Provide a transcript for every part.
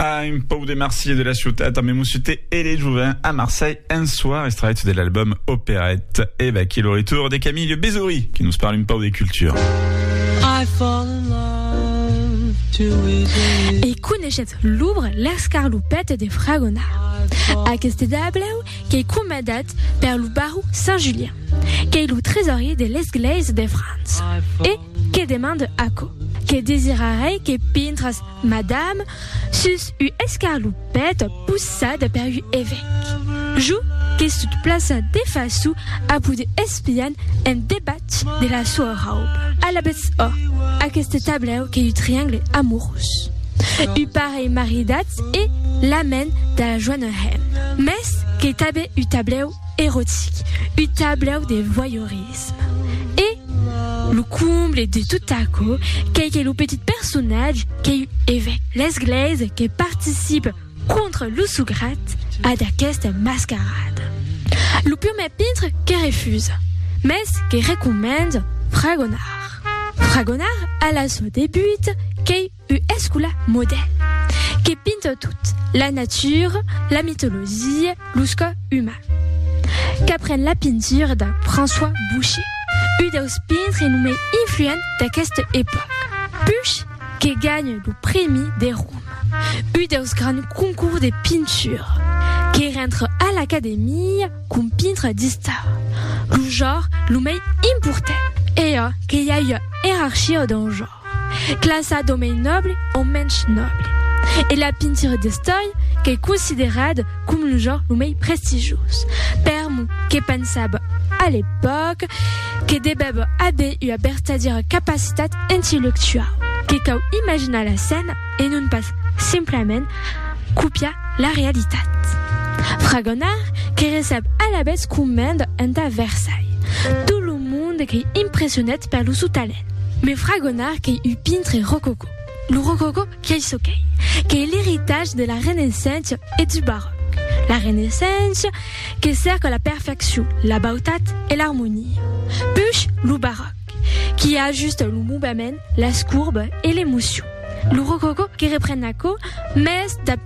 Ah, un pau de Marseille de la ciutat amb Moussute et les Jouvins à Marseille un soir extrait de l'album Opérette. Et va qui le retour de Camille Bézouri qui nous parle un pau de culture. I fall in love too easily. E coneixetz l'ouvre L'escarlopète de Fragona. Aqueste dableu qu'ei comandat per lo baró Saint-Julien, qu'ei lo tresorier de l'esglèisa de França e Que demande aquò? Que desirarei que pintras, madame, sus u escarlupèt possada per u evèc. Jo que sut plaça de façu a poder espian en debat de la soa rauba. Alabètz ò, aqueste tablèu qu'ei u triangle amorós. U parelh maridatz e la men da la joana hèm. Mès qu'ei tabè u tablèu erotic, u tablèu de voyeurisme. L'entusiasme. E lo comble de tot aquò qu'ei que lo petit personatge qu'ei un evèc l'esglèisa que participe contra lo sograt a d'aquesta mascarada. Lo prumèr pintre que refusa, mès que recomenda fragonar. Fragonar a la soa debuta qu'ei U escola modèl que pinta tot, la natura, la mitologia, los cò uman. Qu'apren la pintura de François Boucher, u deus pintre lo mei influent d'aqueste epòc. Puch que ganha lo prèmi de Roma, u deus grands concours de pintura, que rentre a l'Academia com pintre d'istar, lo jor lo mei important. Ea que i a ua erarchia dau jor. Classa d'omei nòble o mensh nòble. E la pintura d'estòia qu'ei considerada com lo genre lo mei prestigioz. Per mo, que pensava a l'epòca que devèva aver ua vertadièra capacitat intellectuau, que cau imaginar la scèna e non pas simplament copiar la realitat. Fragonard que recep alavetz comenda entà Versailles tot lo monde qu'ei impressionat per lo sou talent. Me fragonar qu'ei un pintre rococò. Lo rococò qu'ei çò qu'ei, qu'ei l'eritatge de la Renaissença e du Baròc. La Renaissença que cèrca la perfeccion, la bautat e l'armonia. Puish lo Baròc qui ajusta lo movement, las courbes e l'emocion. Lo rococò que repren aquò, mès dab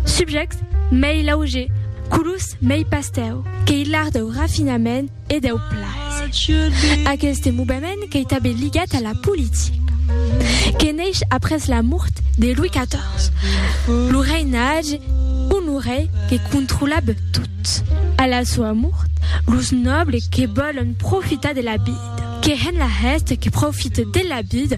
subjèctes mei laugers, colors mei pastèu, qu'ei l'art dau rafinament, e deu plaser. Aqueste movement qu'ei tanben ligat a la politica, que neish après la mort de Louis XIV, lo reinatge Honoré que controlab tot. A la soa mort, los nòbles que vòlon profitar de la vida, que hèn la hèsta que profite de la vida,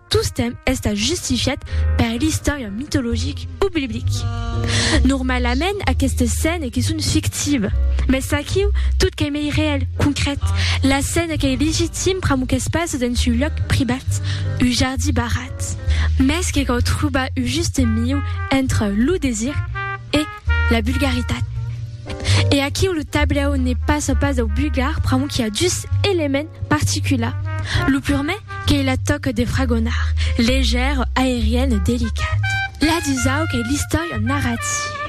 Tostemp estat justifiat per l'istòria mitologic o biblic. Normalament aquestes scènes que son fictives, mès aquiu tot qu'ei mei reèl, concrèt, la scène qu'ei legitim pr'amor qu'es pas dens un lòc privat, un jardí barrat. Mès que cau trobar un juste mieu entre lo desir e la vulgaritat. E aquiu lo tablèu ne passa pas dau vulgar pr'amor qu'i a dus elements particulars, lo purmè, Qu'ei la tòca de fragonar, legèr, aerian e delicat. La dusau qu'ei l'istòria narrativa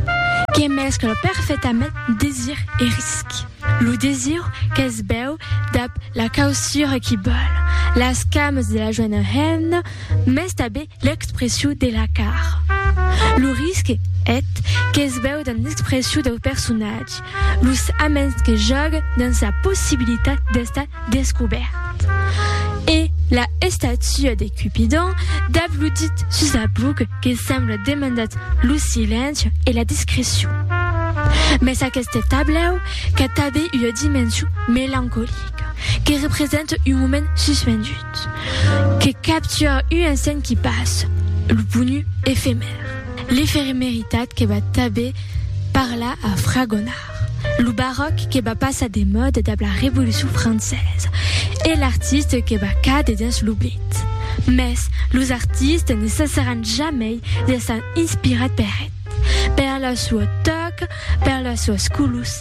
que mescla perfetament desir e risc. Lo desir qu'es bèu dab la causura qui bòl, las cames de la joena hemna mès tabé l'expressiu de la cara. Lo risc, eth, qu'es bèu damb l'expressiu dau personatge, los aments que jòguen dins la possibilitat d'estar descobèrt. E la estatua de Cupidon dab lo dit sus la buc que sembla demandat lo silenci e la discrecion. Mès aqueste tablèu qu'a tanben ua dimension melancolica que representa un moment suspendut. Que capture un instant qui passe, lo ponu efemèr, l'efemeritat que va tanben parlar a Fragonard, lo baròc que va passar de mòda dab la Revolucion Francesa e l'artiste que va càder dins l'oblit. Mès los artistes ne cessaràn jamei d'èsser inspirats per eth, per la sua tòca, per las suas colors,